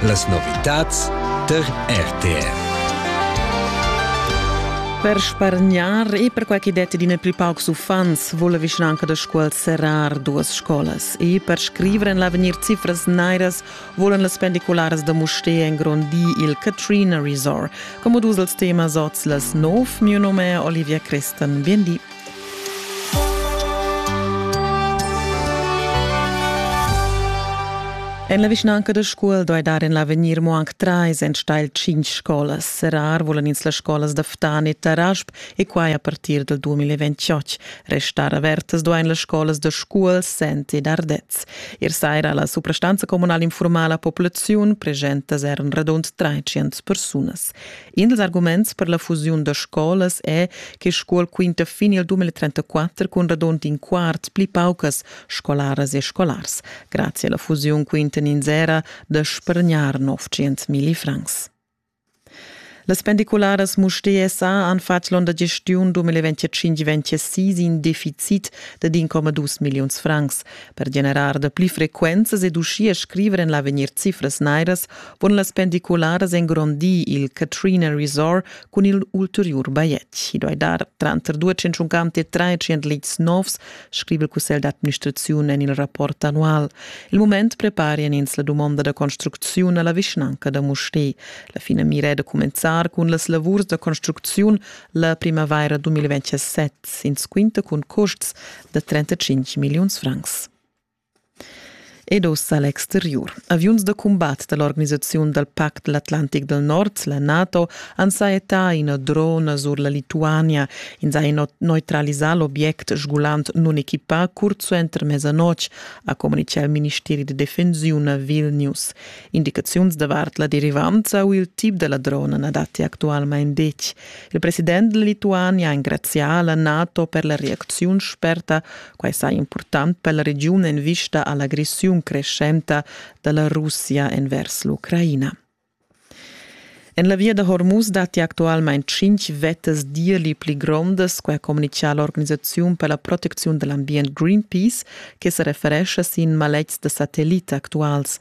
Las novitads tar RTR. Per spargnar e per quai chi det d'ina plü paucs uffants voul la vischnanca da Scuol serrar duas scolas e per scriver en l'avegnir cifras nairas volan las pendicularas da Mustér engrondir il Katrina Resort. Como dus als temas oz las nov, mio nome è Olivia Christen. Bien di. En la vischnanca da Scuol doi dar en l'avegnir mo anc trais enstagl cinc scolas. Serrar vulan ins las scolas da Ftan e Tarasp e quai a partir del 2028. Restar avertas doin las scolas da Scuol, Sent ed Ardez. Ir saira la suprastanza comunal informala populaziun pregentas er un radund 300 persunas. In dals arguments per la fusiun da scolas è che Scuol quinta fin il 2034 cun radund in quart pli paucas scolaras e scolars. Grazie alla fusiun quintan ins era da spargnar 900.000 francs. Las pendicularas Mustér SA han fatg l'onda gestiun 2025-2026 in deficit da 1,2 milliuns francs. Per generar da pli frequenzas ed uschia scriver en l'avegnir cifras nairas Pon las pendicularas engrondir il Katrina Resort cun il ulteriur bajetg. I doi dar tranter 250 e 300 leads novs, scrive il Cussegl d'administrazione en il rapport annual. Il moment preparian ins la domanda da construcziun alla vischnanca da Mustè. La fina mira è da comenzar cun las lavurs da construcziun la primavaira 2027, ins quinta cun costs da 35 milliuns francs. Ed ussa l'exteriur. Aviuns da cumbat da l'organisaziun dal Pact l'Atlantic dal Nord, la NATO, han sajettà ina drona sur la Lituania. Ins ha neutralisà l'obiect sgulant nunequipà curt suenter mesanotg, ha communitgà il ministeri da defensiun a Vilnius. Indicaziuns davart la derivanza u il tip da la drona na datti actualmain detg. Il president della Lituania ha engrazià la NATO per la reacziun sperta Quai saja impurtant per la regiun en vista a l'agressiun creschenta da la Russia envers l'Ucraina. En la via da Hormuz datti actualmain tschintg vettas d'irli pli grondas, quai ha communitgà l'organisaziun per la protecziun da l'ambient Greenpeace, che sa referescha sin maletgs da satellits actuals.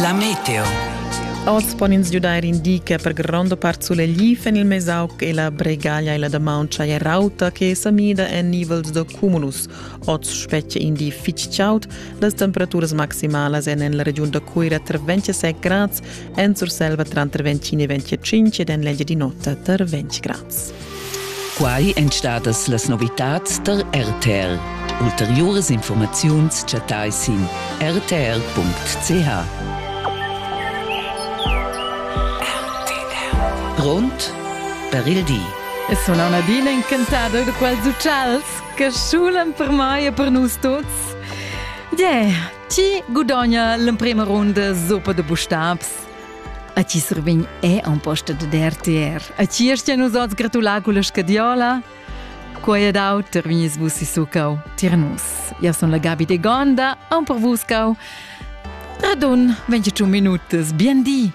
La meteo. Oz pon ins giudair in di che per gronda part sulegl en il Mesauc e la Bregaglia e la Damauncha è rauta che sa mida en nivels da cumulus. Oz spetga in di fitg chaud. Las temperaturas maximalas èn en la regiun da Cuira tra 26 grads, en Surselva tranter 25 e 25 ed en l'Engia di notte tra 20 grads. Quai èn stadas las novitads tar RTL. Ulteriuras informaziuns chattai sin rtl.ch. Grond per il di. E sun auna adina encantada da quels uccials che schulan per mai e per nus tuts. Yeah, chi gudogna l'emprema runda zoppa de bustabs? A ti survegn è en posta da RTR. A ti erst nus oz gratular con la scadiola? Quai è dau, terminis vus si sucau. Tirnus. Io sono la Gabi de Gonda, an per vus cau. Radun, 28 minutas. Bien di!